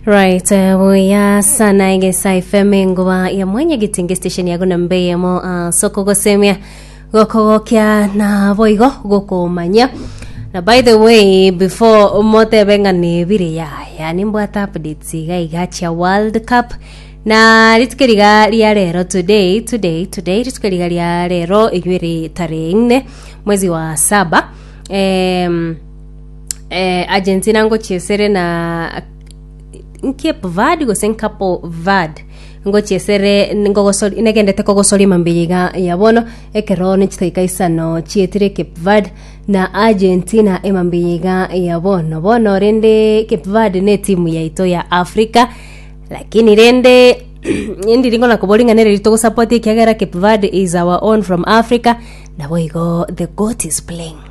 Right, eh, buya sana egesa FM engoba ya mwenye gitingi station yago na mbeyemo uh, soko gosemia gokogokia na boigo gokomanya na by the way before motebe ng'a nebire ya yani mbwata updates iga iga chia world cup na rituko riga ria rero today today today rituko riga ria rero inywe ri tarehe nne mwezi wa saba em, eh, Argentina ngochia esere na Cape Verde gose Capo Verde ngochia esere ngogosori- negendete kogosoria mambia iga ya bono ekero nichitaika isano chietire Cape Verde na Argentina emambia iga ya bono bono rende Cape Verde ne timu yaito ya Africa lakini rende ndiri ngona koboria ng'a nere riri togosapoti ekiagera Cape Verde is our own from Africa nabo igo the goat is playing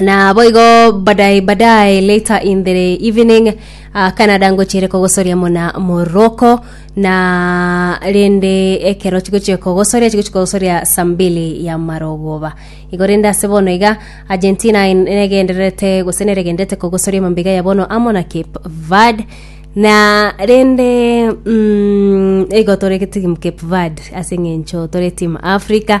na boigo badai badai later in the evening uh, canada ngochire kogosoria muna moroko na rende ekero chigochia kogosoria chigochia kogosoria saa mbili ya marogoba igo rende ase bono iga argentina in- negendererete gose neregenderete kogosoria mambiga ya bono amo na cape verde na rende mm, igo tore timu cape verde ase eng'encho tore timu africa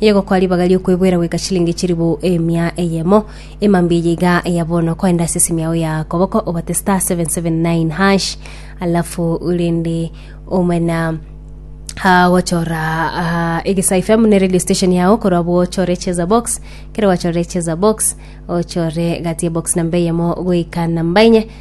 Egokwa ribaga ri'okweboera goika chilingi chilifu emia eyemo. Emambia eye iga eya bono, korende ase esimi yao ya koboko obate star 779 hash, alafu rende omana ah, gochora ah, egesa fm ne radio station yao korwa abwo ochore cheza box kero gwachorire cheza box ochore gati ya box namba eyemo goika namba enye